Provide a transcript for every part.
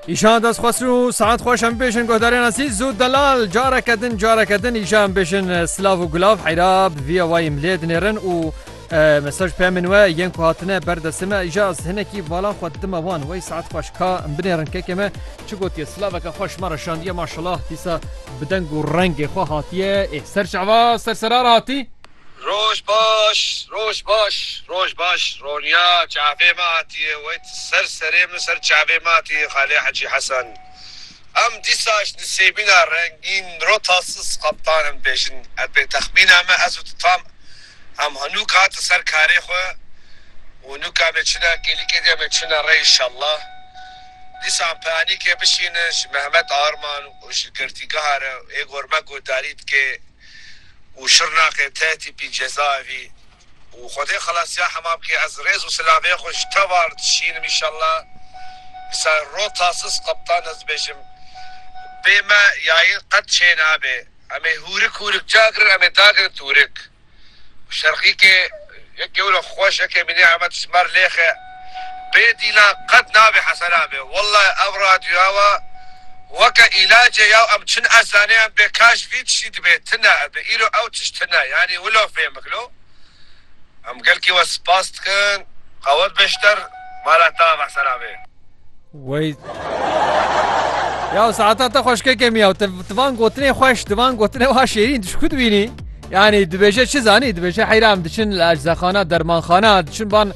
Îşan dest xwestin û saet xweş em bêjin guhdarên asî zû delal careke din careke din îşa em bêjin silav û gulav heyra bi vîya wayî em lê dinêrin û mesaj pê min we yên ku hatine ber destê me îşa ez hinekî balan xwe dime wan wey saet xweş ka em binêrin kekê me çi gotiye silaveke xweş me re şandiye maşallah dîsa bi deng û rengê xwe hatiye ê ser şeva ser serara hatî Roj baş roj baş roj baş Ronya çavê me hatiye wet ser serê min ser çavê me hatiye xalê hecî Hesen em dîsaş nisêbîna rengîn miro tasis qeptan em dibêjin ev bê texmîna me ez û tu tam em hinûk hatin ser karê xwe û nûka me çina kêlîkê diya me çina re înşallah dîsa em pianîkê bişînin ji Mehmet Arman û ji girtîgeha re ê gor me guhdarî dike. û Şirnaqê tê tîpî cezaevî û Xwedê xelasiya hema bikê ez rêz û silavê xwe ji te var dişînim inşallah dîsa ro tasis qeptan ez dibêjim bê me yayîn qet çê nabê emê hûrik hûrik ca girin emê dagirin tûrik. Şerqîkê yek gewre xweş eke mînê Emed Simer lêxe bê dîlan qet nabê hesenabê wellay ev radyoya wa weke îlacê yaw em çin ez zaniyam bê kaş vî tiştî dibê tine ebi îro ew tişt tine yanî wilo fêm bikilo em gelkî we spas dikin qewet beşter mala tav hesenabê. Wey Ya saata te xweş ke kemiya te van gotinê xweş di van gotinê wa şêrîn tu ku dibînî yanî dibêje çi zanî dibêje heyra em diçin li eczexana dermanxana diçin ban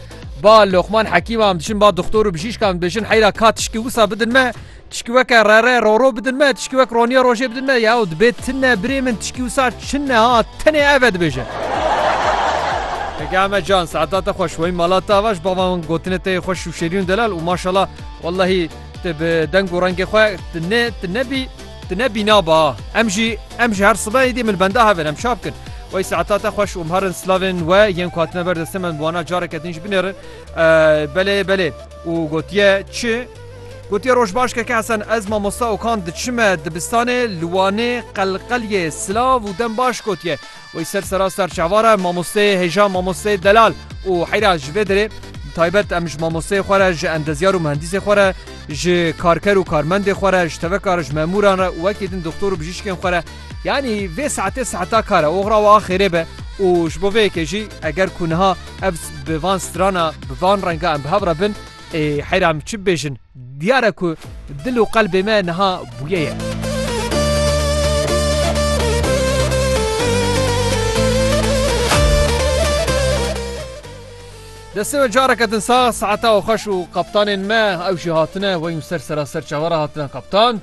ba loqman hekîma em diçin ba doktor û bijîşkan dibêjin heyra ka tişkî wisa bidin me tişkî weke rere roro bidin me tişkî wek roniya rojê bidin me ya dibê tine birê min tişkî wisa çin ne ha tenê ev e dibêje Pekame can saata te xweş wey malata vaş bavan gotinê te xweş Şêrîn Delal û maşala wellahî tu bi deng û rengê xwe tu ne tu nebî tu ne bîna ba. Em jî em ji her sibe êdî min benda hev in em çap kin. Wey saeta te xweş û mherin slavên we yên ku hatine ber destê me bi wana careke din jî binêrin. Belê belê û gotiye çi? Gotiye roj baş keke Hesen ez mamosta Okan diçime dibistanê li Wanê qelqelyê silav û dem baş gotiye. Wê ser seraster çavare mamosteyê hêja mamosteyê delal û heyra ji vê derê bi taybet em ji mamosteyê xwe re ji endezyar û mihendîsê xwe re ji karker û karmendê xwe re ji teveka re ji memûran re û wekî din doxtor û bijîşkên xwe re yanî vê saetê saeta kar e oxra wiha xêrê be û ji bo vê yekê jî eger ku niha ev bi van strana bi van renga em bi hev re bin ê heyra em çi bibêjin. Diyar e ku dil û qelbê me niha bûye ye. Destê me careke din sax, saeta xweş û kaptanên me ew jî hatine weyûn ser seraser çavara hatine kaptan.